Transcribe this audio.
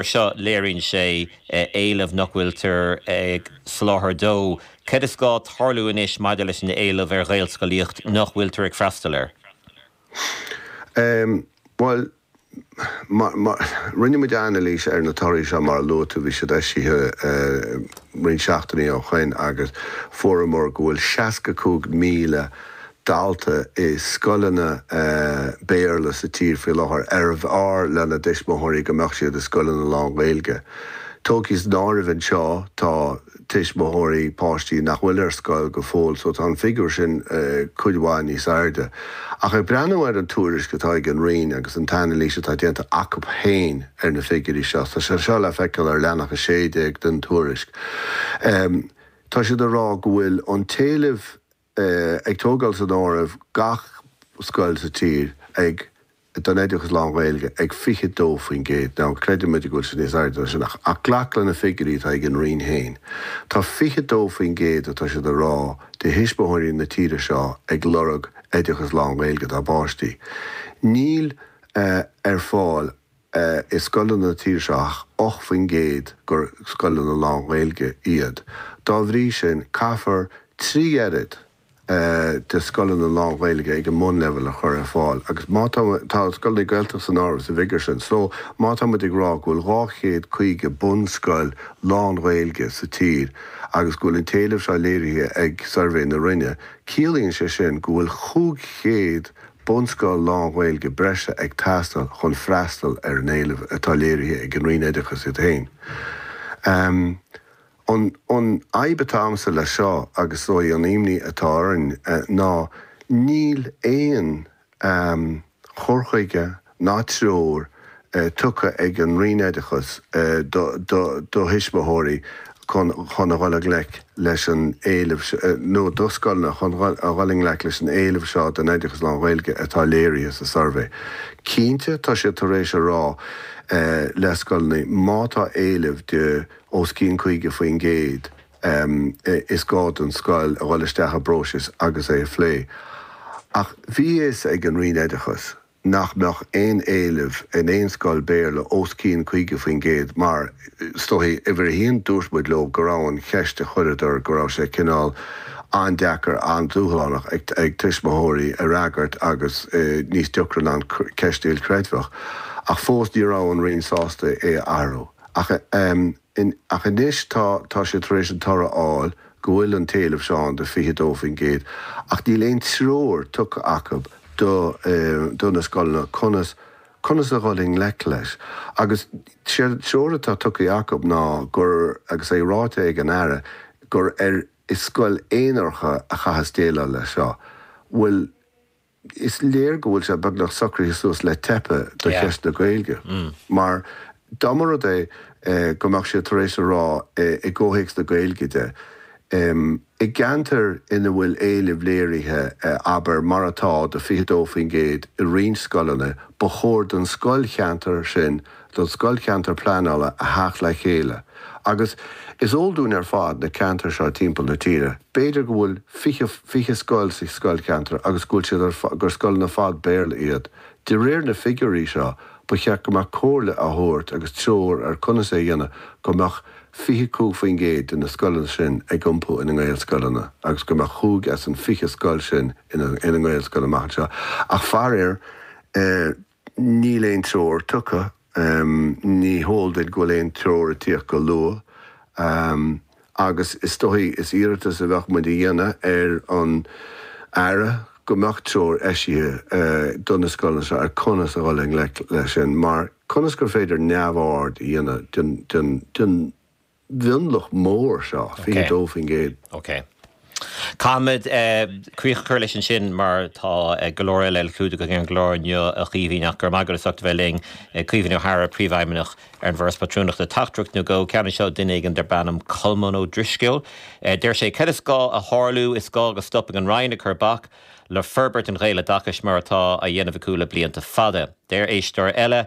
So léiríonn sé éileamh nach bhfuiltear ag soláthar dó. Cad is gá tarlú anois maidir leis an éileamh ar Ghaelscolaíocht nach bhfuiltear ag freastal air? Bhuel, rinne muid anailís ar na torthaí seo, mar a luaigh tú, bhí siad eisithe roinnt seachtainí ó shoin, agus fuaireamar go bhfuil 65,000 dalta i scoileanna Béarla sa tír faoi láthair arbh fhearr lena dtuismitheoirí go mbeadh siad i scoileanna lán-Ghaeilge. Tógtha san áireamh anseo, tá tuismitheoirí páistí nach bhfuil ar scoil go fóill só tá an figiúr sin cuid mhaith níos airde. Ach ag breathnú ar an tuairisc atá ag an Roinn agus an t-anailís atá déanta acu féin ar na figiúirí seo, tá sé seo le feiceáil ar leathanach 16 den tuairisc, tá siad ag rá go bhfuil an t-éileamh a ag tógáil san áireamh gach scoil sa tír ag don oideachas lán-Ghaeilge ag 22%. Now, creidimid go bhfuil sé níos airde ná sin ach glac le na figiúirí atá ag an Roinn féin. Tá 22%, atá siad a rá, de thuismitheoirí na tíre seo ag lorg oideachas lán-Ghaeilge dá bpáistí. Níl ar fáil é i scoileanna na tíre seo ach 8 faoin gcéad gur scoileanna lán-Ghaeilge iad. Dá bhrí sin, caithfear trí oiread de scoileanna lán-Ghaeilge ag an mbunleibhéal a chur ar fáil agus má tá, tá scoileanna Gaeltachta san áireamh sa bhfigiúr sin, so má tá muid ag rá go bhfuil 250 bunscoil lán-Ghaeilge sa tír agus go bhfuil an t-éileamh seo léirithe ag suirbhé na Roinne, ciallaíonn sé sin go bhfuil 500 bunscoil lán-Ghaeilge breise ag teastáil chun freastal ar an éileamh atá léirithe ag an Roinn Oideachais iad féin. An fhadhb atá agamsa leis seo, agus is dóigh an imní atá orainn, ná níl aon chur chuige, ná treoir tugtha ag an Roinn Oideachais do thuismitheoirí chun a dhul i ngleic leis an éileamh, nó do scoileanna chun a dhul i ngleic leis an éileamh seo don oideachas lán-Ghaeilge atá léirithe sa suirbhé. Cinnte, tá siad tar éis a rá le scoileanna má tá éileamh de os cionn 50% is gá don scoil a dhul isteach i bpróiseas agus é a phlé. Ach bhí a fhios ag an Roinn Oideachais, nach mbeadh aon éileamh in aon scoil Béarla os cionn 50%, mar, is dócha, uimhir a haon, dúirt muid leo go raibh an cheist a chuireadar, go raibh sé cineál an-deacair, an-dúshlánach ag tuismitheoirí a fhreagairt agus níos deacra ná an cheist ilchreidmheach. Ach fós ní raibh an Roinn sásta é a athrú. Ach, in, ach anois tá tá siad tar éis an toradh a fháil go bhfuil an t-éileamh seo ann de 22%, ach níl aon treoir tugtha acu do do na scoileanna conas conas a dhul i ngleic leis. Agus séard an treoir atá tugtha acu ná gur, agus é ráite ag an Aire, gur ar iar-bhunscoileanna aonaracha a chaitheas déileáil leis seo. Bhuel. Is léir go bhfuil sé beagnach socraithe suas le teip do cheist na Gaeilge mar dá mba rud é go mbeadh siad tar éis a rá i gcomhthéacs na Gaeilge de, i gceantair ina bhfuil éileamh léirithe, abair, mar atá do 22% i roinnt scoileanna, ba chóir don scoilcheantar sin a don Scoilcheantar Pleanála a theacht le chéile agus is eol dúinn ar fad na ceantair seo timpeall na tíre, b'fhéidir go bhfuil fiche, fiche scoil sa scoilcheantar agus go bhfuil siad ar, gur scoileanna ar fad Béarla iad. De réir na figiúirí seo, ba cheart go mbeadh comhairle á thabhairt agus treoir ar conas é a dhéanamh go mbeadh 25% de na scoileanna sin ag iompú ina nGaelscoileanna agus go mbeadh cúig as an fiche scoil sin ina nGaelscoil amach anseo ach faraor Níl aon treoir tugtha. Ní heol duit go bhfuil aon treoir ag tíocht go luath. Agus is dóigh, is iarratas a bheadh muid a dhéanamh ar an Aire go mbeadh treoir eisithe do na scoileanna seo ar conas a dhul i ngleic leis sin, mar conas gur féidir neamhaird a dhéanamh den mhionlach mór seo, 22%. OK. Caithfimid críoch a chur leis ansin mar tá go leor eile le clúdach againn ar an gclár inniu, a Chaoimhín, ach go raibh maith agat as ucht a bheith linn. Caoimhín Ó hEaghra, Príomhfheidhmeannach ar an bhForas Pátrúnachta. Teachtaireacht nó dhó ceann anseo ó duine éigin darb ainm Colmán Ó Drisceoil. Deir sé, Cad is gá a tharlú, is gá go stopfaidh an Roinn ag cur bac le forbairt an Ghaeloideachais mar atá á dhéanamh acu le blianta fada. Deir éisteoir eile,